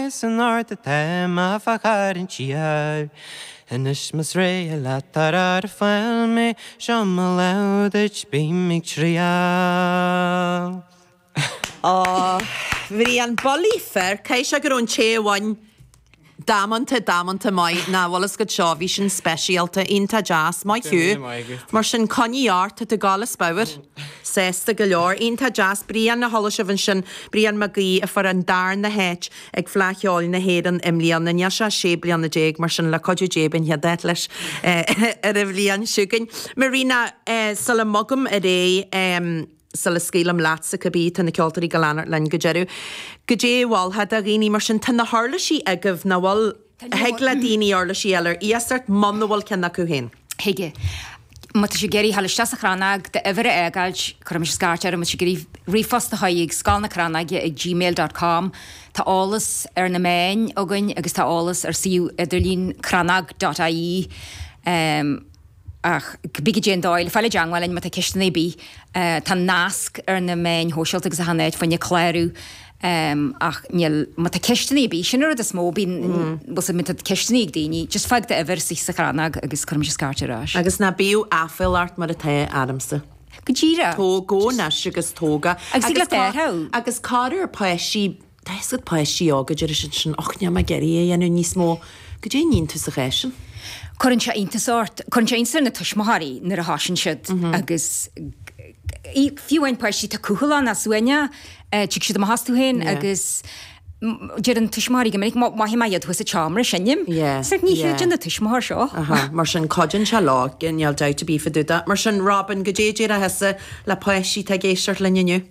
Is in ard a táim a fágfar an tír. Anois más réidh leat ar ar fáil mé seo mo lámh duit bím ag triall. Aww. Bhrian, bulaí fir, cé seo go raibh an té amháin damanta, damanta maith nach bhfuil 's agat so, bhí sin speisialta, iontach deas, maith thú. Mar sin coinnigh ort, tá tú gal is bodhar. Sásta go leor. Iontach deas. Brian a chuala sibh ansin, Brian Mag Aoidh a fuair an darna háit ag Fleadh Cheoil na hÉireann i mbliana. Níl sé ach sé bliana déag mar sin le cuidiú Dé beidh an chéad áit leis ar an bhliain seo chugainn. Marina, sula mbogaim ar aghaidh, em sula scaoilim leatsa cibé, tá na ceoltóirí ag gabháil a fhanacht linn go deireadh. Goidé a mholfá do dhaoine mar sin, tá na huirlisí agaibh, nach bhfuil? Thig le daoine uirlisí a fháil ar iasacht muna bhfuil ceann acu féin. Thig. Má tá siad ag iarraidh dhul isteach sa Chrannóg d'uimhir a fhágáilt, cuirfidh mise scairt orthu. Má tá siad ag iarraidh ríomhphost a chur chuig, scoil na crannóige ag gmail dot com. Tá eolas ar na meáin againn agus tá eolas ar suíomh idirlín crannog dot ie. Ach cibé goidé an dóigh le fáil i dteangmháil linn má tá ceisteanna ar bith. Tá nasc ar na meáin shóisialta agus achan áit fá choinne clárú ach níl, má tá ceisteanna ar bith, sin an rud is mó, bíonn, bhfuil 's agat má tá ceisteanna ag daoine, just fág do uimhir istigh sa Chrannóg agus cuirfidh mise scairt ar ais. Agus ná bíodh aiféala ort mar atá ormsa. Go díreach. Tóg, go naisc agus tú óg. Agus ag lucht áirithe. Agus corruair páistí Tá a fhios agat páistí óga deir siad ansin och, níl mé ag iarraidh é a dhéanamh níos mó. Goidé a níonn tusa sa chás sin. Cuireann sé iontas ort, cuireann sé iontas ar na tuismitheoirí nuair a thoiseann siad agus fiú amháin páistí atá cúthail ann as uaine, tig siad amach astu féin agus deireann tuismitheoirí go minic mhothaigh mé iad thuas sa tseomra ag seinm, so ní chreideann an tuismitheoir seo. Mar sin cuidíonn sé leo, níl dabht ar bith fadúda. Mar sin Robin, goidé a déarfá le páistí atá ag éisteacht linn inniu.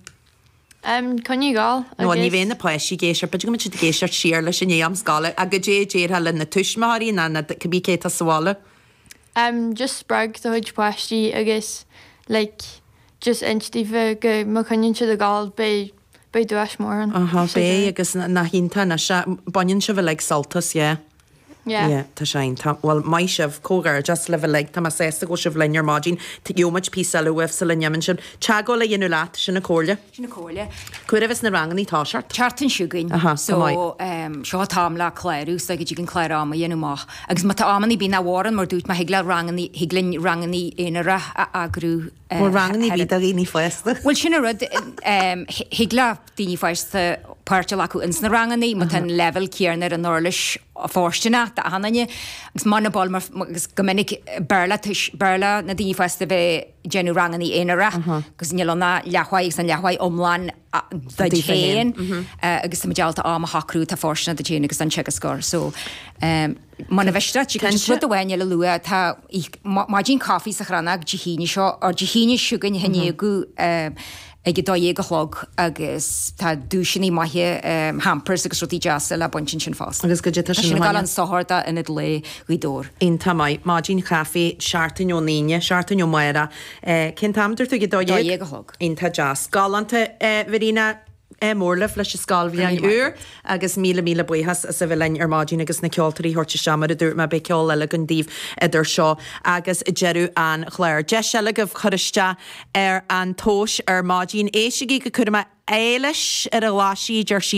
Coinnigh ag gabháil agus. Nó ní bheidh na páistí ag éis, b'fhéidir go mbeidh siad ag éisteacht siar leis i ndiaidh am scoile, ach goidé a déarfá le na tuismitheoirí ná na cibé cé atá sa bhaile? Just spreag do chuid páistí agus like just inis daofa go má choinnionn siad ag gabháil beidh beidh duais mór ann. Aha beidh agus nach iontach anois baineann sibh uilig sult as yeah. Yeah. Yeah, tá sin, tá, bhuel, maith sibh, comhghairdeas libh uilig, tá mé sásta go bhfuil sibh linn ar maidin, gheobhaidh muid píosa eile uaibh sula n-imíonn sibh. Teagmháil a dhéanamh leat, sin an chomhairle. Sin an chomhairle. Cá huair a bheas na ranganna ag toiseacht? tSeachtain seo chugainn. Aha, go maith. So, seo an t-am le clárú, so go dtig an clár ama a dhéanamh amach. Agus má tá amanna ar bith nach bhfóireann, mar dúirt mé, thig le ranganna, thig linn ranganna aonair a eagrú Bhfuil rangannaí ar bith do dhaoine fásta? Bhuel sin an rud, thig le daoine fásta páirt a ghlacadh ins na rangannaí má tá an leibhéal céarna ar an uirlis fóirstineach d'achan nduine agus muna bhfuil agus go minic b'fhearr le b'fhearr le na daoine fásta bheith déanamh rangannaí aonarach agus níl ann ach leathuair agus an leathuair iomlán duit féin agus tá muid ábalta am a shocrú, atá fóirsteanach duit féin agus an teagascóir. So muna miste díreach rud amháin eile a lua, tá maidin caife sa Chrannóg Dé hAoine seo, ár Dé hAoine seo chugainn a thaitníodh ag a dó dhéag a chlog agus tá duaiseanna maithe, hampers agus rudaí deasa le baint ansin fosta. Agus go dté tá sin ag gabháil chun sochair do Ionad Lae Ghaoth Dobhair. Iontach maith, maidin chaife, seachtain ón Aoine, seachtain ó amárach. Cén t-am a dúirt tú? Ag a dó dhéag? Dó dhéag a chlog. Iontach deas. Galánta, a Verena. Ádh mór libh leis an scoilbhliain úr agus míle míle buíochas as a bheith linn ar maidin agus na ceoltóirí a thabhairt isteach. Mar a dúirt mé, beidh ceol eile againn daoibh idir seo agus deireadh an chláir. Deis eile agaibh cur isteach ar an tomhas ar maidin. Éistigí go cúramach. Éilis ar a ghlaisíd, ar sí.